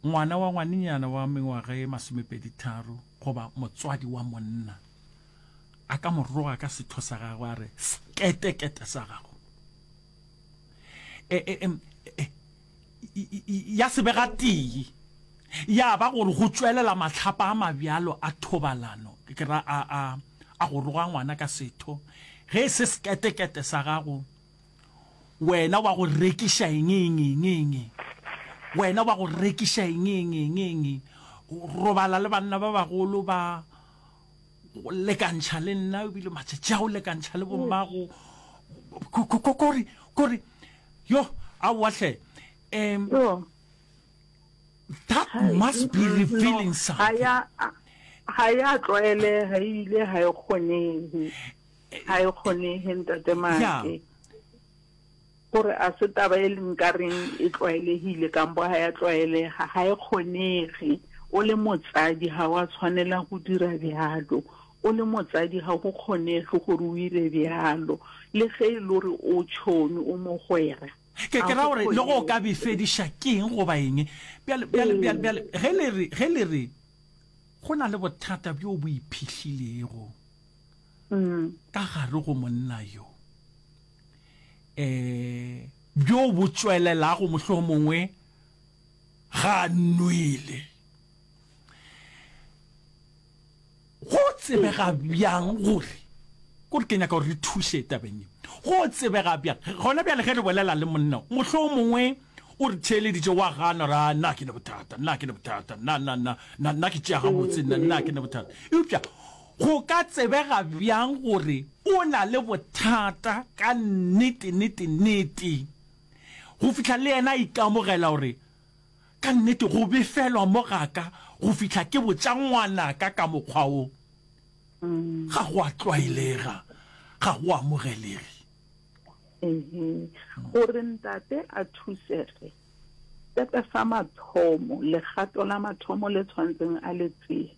Ngwana wa ngwanenyana wa mengwaga ye masomepedi tharo goba motswadi wa monna a ka mo roga ka setho sa gagwe a re, Seketekete sa gago! E, e, em, e, ya se be gatee ya ba gore go tšwelela mahlapa a mabjalo a thobalano, ke ra a, a, a go roga ngwana ka setho, ge e se seketekete sa gago, Wena wa go rekiša eng, eng, eng, eng, eng? Wena wa go rekiša eng, eng, eng, eng, eng? Robala le banna ba bagolo ba go lekantšha le nna, o bile matšatši a go lekantšha le bommago. Ko, ko, ko, ko re, ko re, yo, aowa hle. Um, Yo. that Hai, must be mm, revealing no, ha something. ya, ha ya tlwaelega ebile ha e kgonehe. ga e kgonege ntate maake gore a se taba e leng ka reng e tlwaelegile kampo ga ya tlwaelega ga e kgonege o le motsadi ga wa tshwanela go dira bjalo o le motsadi ga go kgonege gore o ire bjalo le ge e le gore o tšhomi o mogwera ke ke ra gore le go ka befediša keng goba eng ge le re go na le bothata bjo bo iphihlilego ka gare go monna yo, um bjo bo tšwelelago mohlomongwe ga a nwele. Go tsebega bjang gore ko re ke nyaka gore re thuše tabeng ye go tsebega bjang gona bjale ge re bolela le monna mohlomongwe o re theeleditše wa gana ra nna ke ne bothata nna ke ne bothata nna nna nna nna nna ke tšea gabotse nna nna ke ne bothata eupša Go ka tsebega bjang gore o na le bothata ka nnete, nnete, nnete? Go fihla le yena a ikamogela gore, Ka nnete go befelwa mo ga ka go fihla ke botša ngwanaka ka mokgwa wo. Ga go a tlwaelega, ga go amogelege. Ee, gore ntate a thusege, sepe sa mathomo, legato la mathomo le tshwanetseng a le tseye,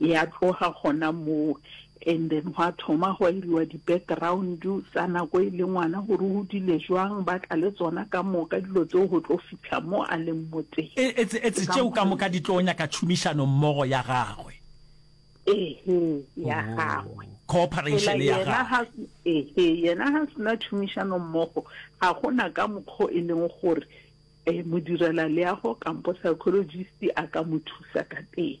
Ya tloga gona moo and then gwa thoma gwa iriwa di-background tsa nako e le ngwana gore o dile jwang, ba tla le tsona ka moka dilo tseo go tlo fihla mo a leng mo teng. E, etse, etse tšeo ka moka di tlo nyaka tšhomišano mmogo ya gagwe. Ehe, ya oh, gagwe. Oh, cooperation ya gagwe. Ehe, yena ha sena tšhomišano mmogo ga gona ka mokgo e leng gore eh modirela leago kampo psychologist a ka mo thusa ka teng.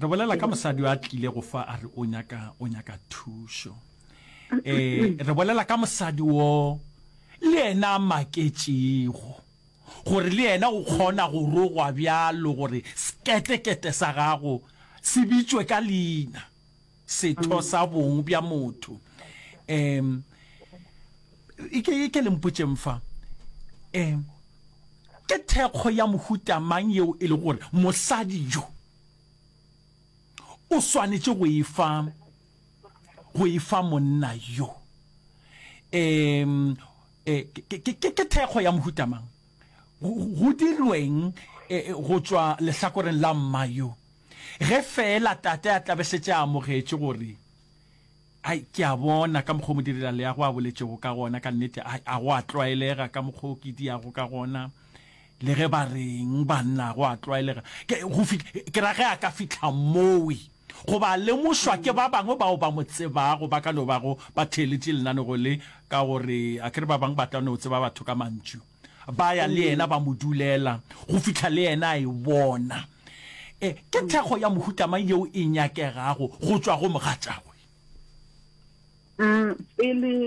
re bolela ka mosadi a tlile go fa a re o nyaka o nyaka thušo eh re bolela ka mosadi wo le yena a maketšego gore le yena o kgona go rogwa bjalo gore seketekete sa gago se bitšwe ka leina setho sa bong bja motho um e ke e ke le mpotšeng fa um ke thekgo ya mohuta mang yeo e le gore mosadi jo o swanetše go e fa go e fa monna yo um eh, ke ke- ke- ke- ke thekgo ya mohuta mang go go dirweng eh, eh, go tšwa lehlakoreng la mma yo Ge feela tate a tla be šetše a amogetše gore, Ai, ke a bona ka mokgwa o modirelaleago a boletšego ka gona, ka nnete, ai, a go a tlwaelega ka mokgwa o ke diago ka gona, le ge ba reng, banna, a go a tlwaelega. Ke, go fihla, ke ra ge a ka fihla mowe, goba a lemošwa ke ba bangwe bao ba mo tsebago, ba ka no bago ba theeletše lenaneo le, ka gore a ke re ba bangwe ba tla no tseba batho ka mantšu. Ba ya le yena ba mo dulela go fihla le yena a e bona. E, ke thekgo ya mohuta mang yeo e nyakegago go tšwa go mogatšagwe? Pele